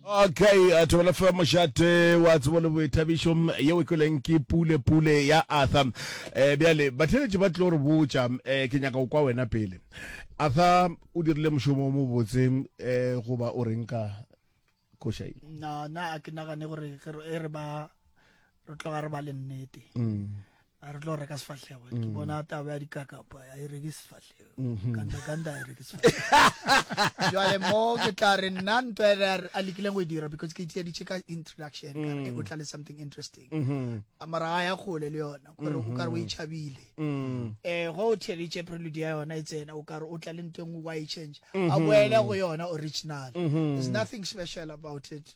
okay a thobela fa mošate wa tsebo le boithabišo yeo e kweleng ke pule pule ya arthur um bjale batheletši ba tlo re botša um ke nyaka go kwa wena pele arthur o dirile mošomo o mobotse um goba o reng ka košai na na a ke nagane gore e re ba re tloga re ba le nnete um a re tlo reka sefahlego ke mm. bona taba ya dikakapa a e reke sefahlego mm-hmm. kandakanda a e reke sefahlego jale mo ke tla re nna nto e a lekileng go e dira because ke itiaditše ka introduction ka re mm. o tla le something interesting mm-hmm. a mara a ya kgole le yona kore o kare o e chabile um go o theleditše prelude ya yona e tsena o kare o tla le nto engwe wa e change a boele go yona original there's nothing special about it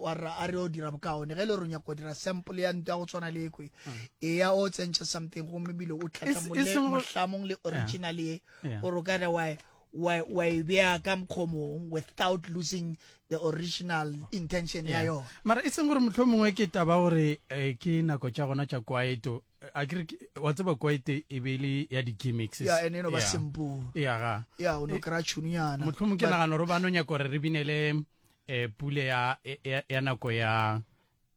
wa rra a re o dira bokaone ge e le gore o nyako dira sample ya ntwa go tshwana le ekwe mm. eya o tsentšhe something gomme bile o tlhatlhamolehlamong le original ye gore o ka re wa e beya ka mokgomong without losing the original intention ya yona mara e seng gore motlho mongwe ke taba gore eh, ke nako tša gona tša kwaeto a kere wa tseba kwaete e be le ya di-gimmicks ya ene no ba simple ya ga ya o no kra tšhuniana motlho mongwe ke nagana gore ba no nyako gore re binele e pule ya ya, ya nako ya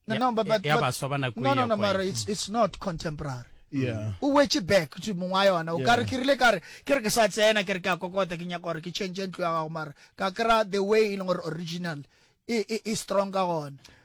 no, no, but, but, ya baswa ba nako no, no, no, mara it's, it's not contemporary yeah. o wetse back to mongwe wa yona o yeah. kare ke rile kare ke re ke sa tsena ke re ke a kokota ke nyaka gore ke change ntlo ya gago mara ka kry the way e leng gore original e, e, e strong ka gona